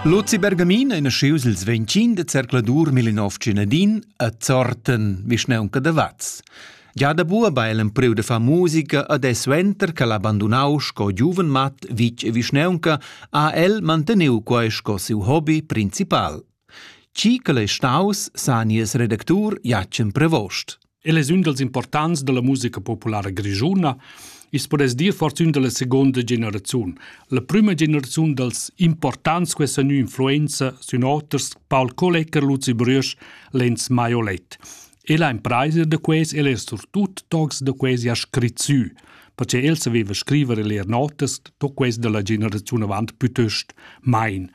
Luzi Bergamin è nascius il 25 de zercladur 1910 a Zorten, vischnaunca da Vaz. Già da bua ba el empriu de far musica ad e suenter che l'ha abbandonau sco giuven mat vitg e vischnaunca, ha el manteniu quei sco siu hobby principal. Ci che l'è staus sa nies redactur Jacen Prevost. El es ün dals importants da la musica populara grischuna, i's podess dir fortün da la seguonda generaziun, la prüma generaziun dals importants quai sa gnü influenza sün oters Paul Kollecker, Luzi Brüesch, Lenz Maiolet. El ha impraisa da quais, el es surtut tocs da quasi ha scrit sü, perche el saveva scriver e leer notas, to quais da la generaziun avant pütöst main.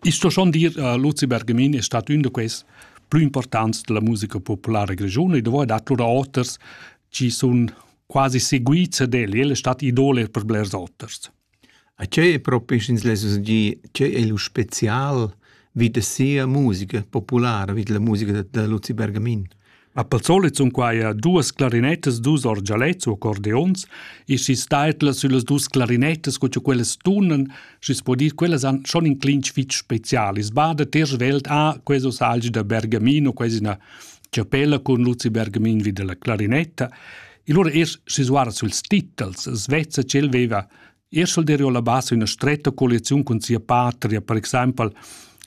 Ich sto schon dir, uh, Luzi Bergamin è stat ün da quais plü importants della musica populara grischuna e dovrà dat lura oters chi sun quasi seguits ad el, el è stat idole per blers oters. A che è propi, sch'ins less dir, che è lo special vid sia musica populara, vid la musica da Luzi Bergamin? Ma pel solit sun quaia duas clarinettas, dus orgialets u accordeons e schi staitla süllas dus clarinettas co cha quellas tunan Schi's po dir, quellas han schon in clinch fich special. I's bada ter svelt a queso salgi da Bergamino, quasi üna chapella cun Luzi Bergamin vi dalla clarinetta. E lura eir schi's guarda süls titels, svezza ch'el veva eir sch'el derio la bassa üna stretta colleziun cun sia patria, per exaimpel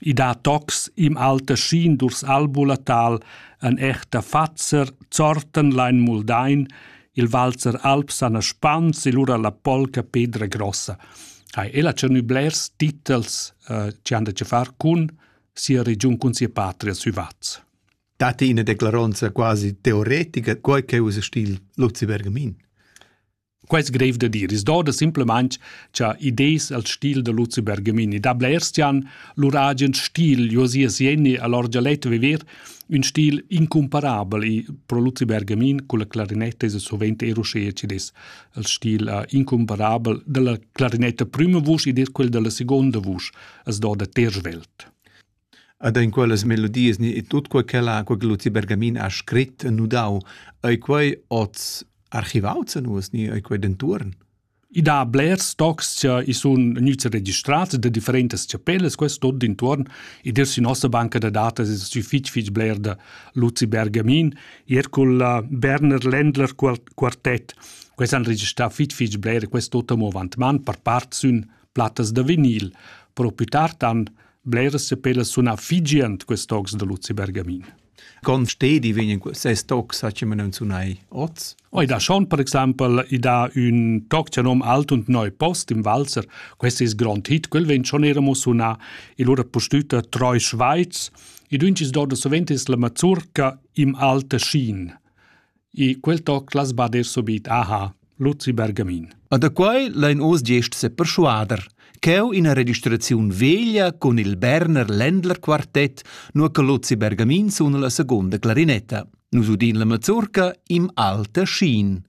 i dà tocs im alter Schien durchs Albulatal, an echter Fatzer, Zortenlein, Muldain, Il valzer alb sana spans e lura la polca pedra grossa. Ha ella tschernü blers titels eh, che han da che far cun sia regiun cun sia patria sü Vaz. Date ina declaronza quasi teoretica, quai che usa stil Luzi Bergamin. Quai es grev da dir. Es doda simplemente cha idees al stil da Luzi Bergamini. Da blers tian lur agen stil, Josia Sieni, all'orgialetto viver, Ün stil incumparabel i pro Luzi Bergamin culla clarinetta esa suvent eir uschea chi'd es. Il stil incumparabel da la clarinetta prüma vusch ed eir quel da la seguonda vusch as do da ter svelt. Ed in quellas melodias e tut quai ch'ella quai che Luzi Bergamin ha scrit e nudau, ei quei oz archivau za nus ni ei quei dentuorn? I dà blers tocs cha i sun gnüts registrats da differentas chapellas, quest tuot d'intuorn. Id es sü nossa banca da datas es stü fich fich bler da Luzi Bergamin. Ir cul Berner Ländler quartet. Quels han registrà fich fich bler e quest tuot amo avant man. Per part sün plattas da vinil. Però plü tard han bleras chapellas sunà fich giand quest tocs da Luzi Bergamin. con stedi vegn ses toc sa che non sunai oz Oi da schon per exaimpel i da ün toc che nom Alt und Neu Post im Walzer quest is grond hit quel vegn schon era mo suna il ora postüta Treu Schweiz i duncis do da sovent es la mazurca im Alte Schien I quel toc las bader subit aha, Luzi Bergamin. A da quai lain oz gest seperschuader, ch'eu ina registraziun veglia cun il Berner Ländler Quartett, nur che Luzi Bergamin suna la seconda clarinetta. Nus udin la mazurca im alter Schien.